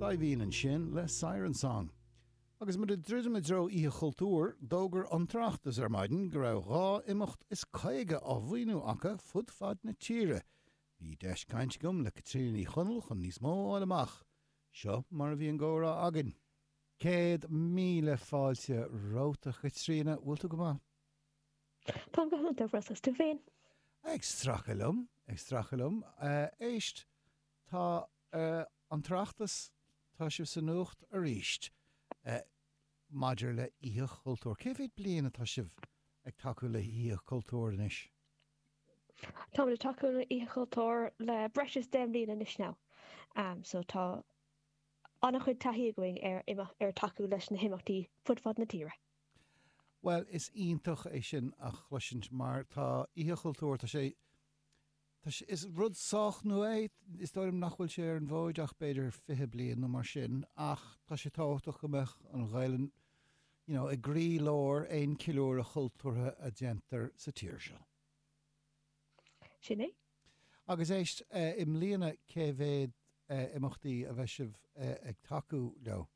Saidhbhín ansin le Siren Song. Agus muid ag druidim i dtreo Oíche Chultúir, d'fhógair An tOireachtas ar maidin go raibh dhá imeacht is caoga á mhaoiniú acu fud fad na tíre. Bhí deis caint agam le Caitríona Ní Chonaill chun níos mó a fháil amach. Seo mar a bhí an gcomhrá againn. Céad míle fáilte romhat, a Chaitríona. Bhfuil tú go maith? Táim go hiontach ar fad is tú féin. Ag stracadh liom, ag stracadh liom. Éist, tá an tOireachtas, tá sibh sa nuacht arís maidir le Oíche Chultúir. Cé mhéad bliain atá sibh ag tacú le hOíche Chultúir anois? Táimid ag tacú le hOíche Chultúir le breis is deich bliain anois now, so tá an-chuid taithí againn ar tacú leis na himeachtaí fud fad na tíre. Bhuel, is iontach é sin a chloisint mar tá Oíche Chultúir, tá sé, tá sé, is rud sách nua é, is dóigh liom nach bhfuil sé ar an bhfóid ach b'fhéidir fiche bliain nó mar sin ach tá sé tábhachtach go mbeadh an Ghaelainn, you know, i gcroílár aon cheiliúradh chultúrtha a dhéantar sa tír seo. Sin é. Agus éist, i mbliana cé mhéad imeachtaí a bheidh sibh ag tacú leo?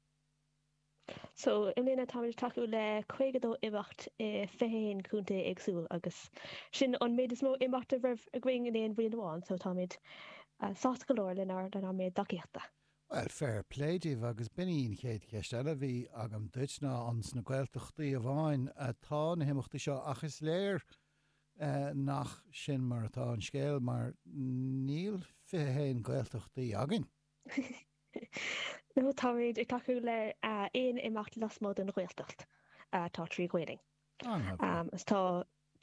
So i mbliana táimid ag tacú le 52 imeacht i 21 contae éagsúil agus sin an méid is mó imeacht a raibh againn in aon bhliain amháin, so táimid sásta go leor leis an méid tacaíochta. Bhuel, fair play daoibh agus b'in í an chéad cheist eile a bhí agam duit ná an sna Gaeltachtaí amháin atá na himeachtaí seo ach is léir nach sin mar atá an scéal mar níl 21 Gaeltachtaí againn. nó táimid ag tacú le haon imeacht lasmuigh den Ghaeltacht atá trí Ghaelainn. Is tá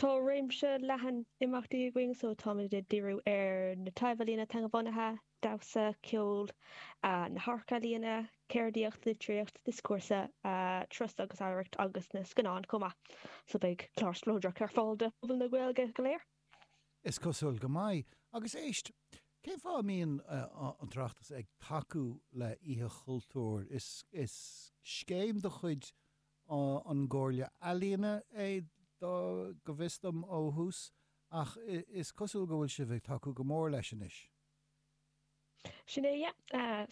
tá réimse leathan imeachtaí againn, so táimid ag díriú ar na taibhealaíona teangabhunaithe, damhsa, ceol, na hamharcealaíona, ceardaíocht, litríocht, dioscúrsa, turas agus oidhreacht agus na scannáin chomh maith. So beidh clár spleodrach ar fáil do phobal na Gaeilge go léir. Is cosúil go mbeidh. Agus éist, cén fáth a mbíonn an tOireachtas ag tacú le Oíche Chultúir? Is scéim de chuid an gComhairle Ealaíona é, go bhfios dom, ó thús, ach is cosúil go bhfuil sibh ag tacú go mór leis anois. Sin é, yeah.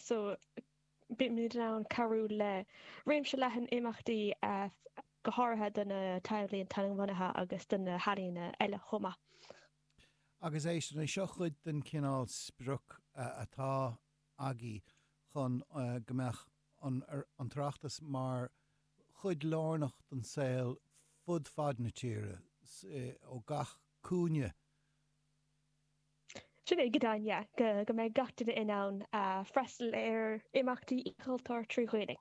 Beimid in ann cabhrú le réimse leathan imeachtaí, go háirithe do na taibhealaíona teangabhunaithe agus do na healaíona eile chomh maith. Agus é sin, é seo cuid den chineál sprioc atá agaibh chun go mbeadh an tOireachtas mar chuid lárnach den saol fud fad na tíre, ó gach cúinne. Sin é go deimhin, yeah, go mbeidh gach duine in ann freastal ar imeachtaí Oíche Chultúir trí Ghaelainn.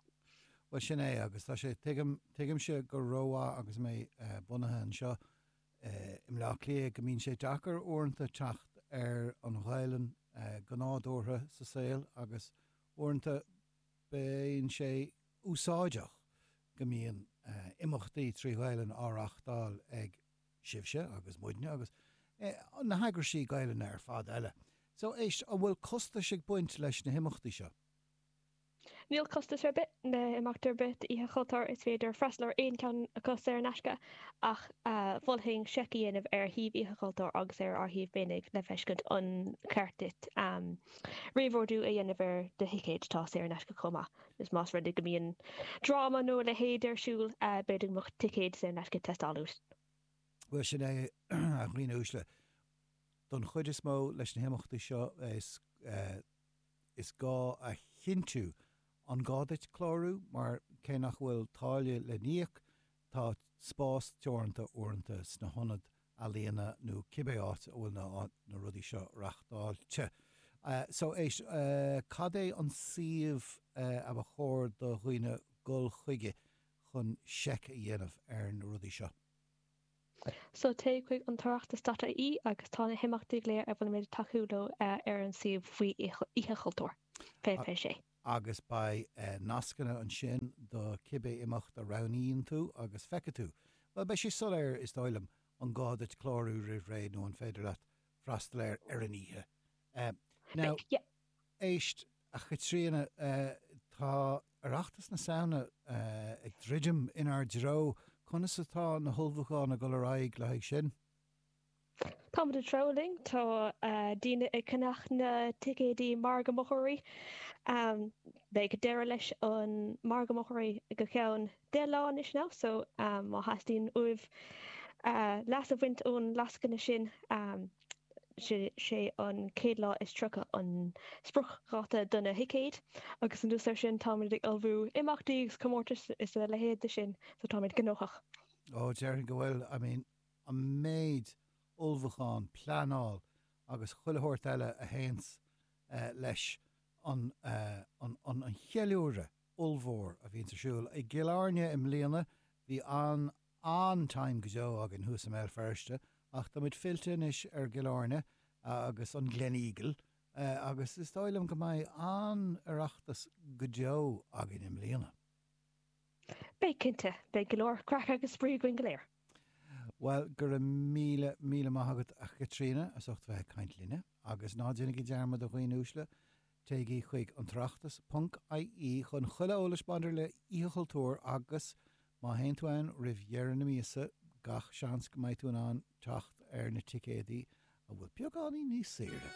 Bhuel, sin é, agus tá sé, tuigim, tuigimse go rómhaith agus mé bunaithe anseo i mBleá Cliath, go mbíonn sé deacair uaireanta teacht ar an Ghaelainn go nádúrtha sa saol agus uaireanta bíonn sé úsáideach go mbíonn imeachtaí trí Ghaelainn á reáchtáil ag sibhse agus muidne agus, eh, na heagrais Ghaelainne ar fad eile. So, éist, an bhfuil costais ag baint leis na himeachtaí seo? Níl costas ar bith le himeacht ar bith d'Oíche Chultúir. Is féidir freastal ar aon cheann acu saor in aisce ach eh, mholfainn seic a dhéanamh ar shuíomh Oíche Chultúir agus ar ár shuíomh féinig le feiscint an cheart duit, em, réamhordú a dhéanamh ar do thicéid, tá saor in aisce chomh maith. Is más rud é go mbíonn dráma nó a leithéid ar siúl, b'fhéidir go mbeadh ticéid saor in aisce ag teastáil uait. Bhuel, sin é, a dhaoine uaisle. Don chuid is mó, leis na himeachtaí seo, is gá a chinntiú an gá duit clárú, mar cé nach bhfuil táille le n-íoc, Tá spás teoranta uaireanta sna hionaid ealaíona nó cibé áit a bhfuil na, na rudaí seo reáchtáilte. So éist, cad é an suíomh a ba chóir do dhaoine dhul chuige chun seic a dhéanamh ar na rudaí seo? So téigh chuig an tOireachtas dot IE agus tá na himeachtaí go léir a bhfuilimid ag tacú leo ar an suíomh faoi Oíche Chultúir. Fiche, fiche sé. agus beidh nascanna ansin do cibé imeacht a roghnaíonn tú agus feicfidh tú, bhuel, beidh sé soiléir, is dóigh liom, an gá duit clárú roimh ré nó an féidir leat freastal air ar an oíche. Now, éist, a Chaitríona, tá Oireachtas na Samhna ag druidim inár dtreo, conas atá na hullmhúcháin ag dul ar aghaidh le haghaidh sin? Táimid ag treabhadh linn, tá daoine ag ceannach na ticéidí Margadh Mochóirí. Beidh deireadh leis an Margadh Mochóirí go ceann deich lá anois now so má theastaíonn uaibh leas a bhaint ón lascaine sin, sé an chéad lá is tríocha an spriocdháta do na thicéid agus anuas air sin táimid ag ullmhú imeachtaí agus comórtais is a leithéid de sin so táimid gnóthach. Ó, déarfainn go bhfuil, I mean, an méid ullmhúchán, pleanáil agus chuile shórt eile a théanns leis an cheiliúradh ollmhór a bhíonns ar siúl i gCill Airne i mbliana. Bhí an-, an-time go deo againn thuas i mBéal Feirste ach tá muid fillte anois ar Chill Airne agus an Gleneagle agus is dóigh liom go mbeidh an-Oireachtas go deo againn i mbliana. Beidh, cinnte. Beidh go leor craic agus spraoi againn go léir. Bhuel, go raibh míle, míle maith agat, a Chaitríona, as ucht bheith ag caint linne. Agus ná déanaigí dearmad, a dhaoine uaisle, téigí chuig an tOireachtas ponc IE chun chuile eolais maidir le hOíche Chultúir agus, má théann tú ann roimh dheireadh na míosa, gach seans go mbeidh tú in ann teacht ar na ticéadaí atá beagáinín níos saoire!